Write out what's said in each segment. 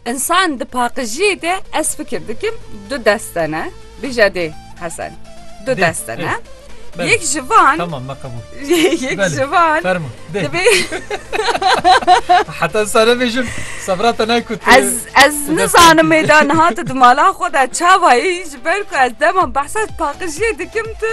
Însan di paqijiyê de ez fikir dikim du deste ne bêje dê hesen du deste ne yek ji van yek ji van dibê heta sare bêjim sevra te nekut ez ez nizanim mêda niha tu di mala xwe de çavayî ji ber ku ez dema behsa paqijiyê dikim tu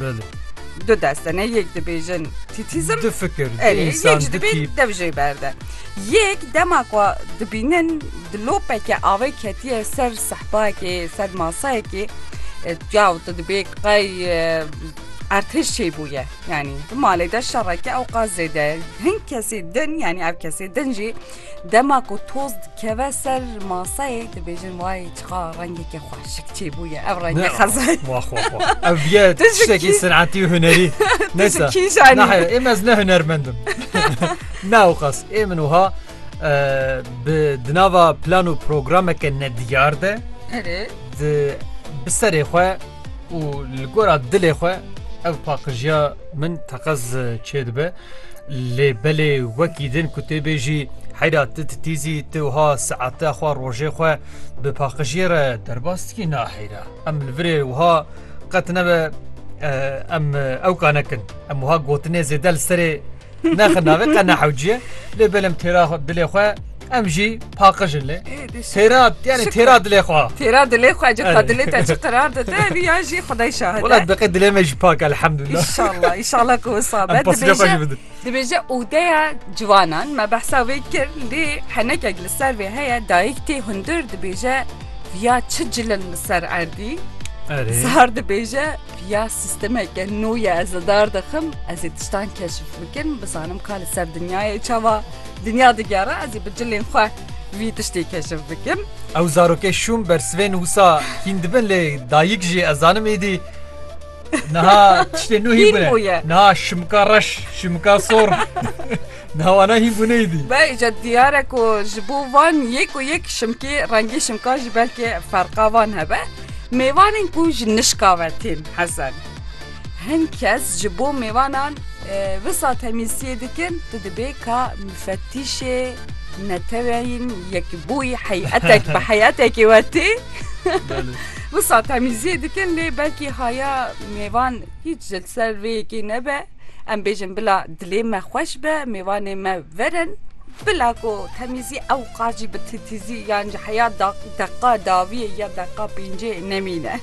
Belê. Du deste ne yek dibêjin tîtîzm. Du fikir. Erê yek ji dibê dev jê berde. Yek dema ku dibînin di lopeke avê ketiye ser sehpayekê ser masayekê ya û tu dibê qey ertiş çê bûye yanî di malê de şereke ew qas zêde hin kesê din yanî ev kesê din jî dema ku toz dikeve ser masayê dibêjin wayê Çiqa rengekê xwe şik çê bûye ev rengê xezay. Wah wah wah. Ev ye tiştekî senetî û hunerî. Neyse. Nahir êm ez ne hunermendim. Ne oqas ê min wiha bi di nava plan û programeke nediyar de di bi serê xwe û li gora dilê xwe ev paqijiya min teqez çêdibe lê belê wekî din ku tê bêjî heyra ti titîzî ti wiha seate xwe rojê xwe bi paqijiyê re derbas dikî na heyra em li virê wiha qet nebe em ew kanekin em wiha gotinê zêde li serê Nexir navê qe nehewciye lê belem têra dilê xwe em jî paqijin lê. Têra yani têra dilê xwe. Têra dilê xwe cî xwe dilê te çi qirar dide vî ya jî xudey şahid. Wala diqê dilê me jî pak elhamdullah. İnşallah inşallah ku wisa be. Dibêje dibêje odeya ciwanan me behsa wê kir lê henekek li ser vê heye dayik tê hundir dibêje viya çi cilin li ser erdî. Sar dibêje Ya sîstemeke nû ye ez li dar dixim, ez ê tiştan keşif bikim, bizanim ka li ser dinyayê çawa dinya digere, ez ê bi cilên xwe vî tiştê keşif bikim. Ew zarokê şûm bersivên wisa hîn dibin lê dayik jî ez zanim êdî niha tiştê nû hîn bûye. Niha şimika reş, şimika sor. Niha wana hîn bû neyîdî. Beh îca diyar e ku ji bo van yek û yek şimkê rengê şimkan jî belkê ferqa van hebe. Mêvanên ku ji nişka ve tên hezen. Hin kes ji bo mêvanan wisa temîlsiyê dikin tu dibê ka mifetîşê neteweyên yekbûyî heyetek bi heyetekê we tê wisa temîlziyê dikin lê belkî haya mêvan hîç ji ser vê yekê nebe. Em bêjin bila dilê me xweş be, mêvanê me verin. Bila ku temîzî ewqas jî bi titîzî yan ji heya deqa dawiyê ya deqa pêncê nemîne.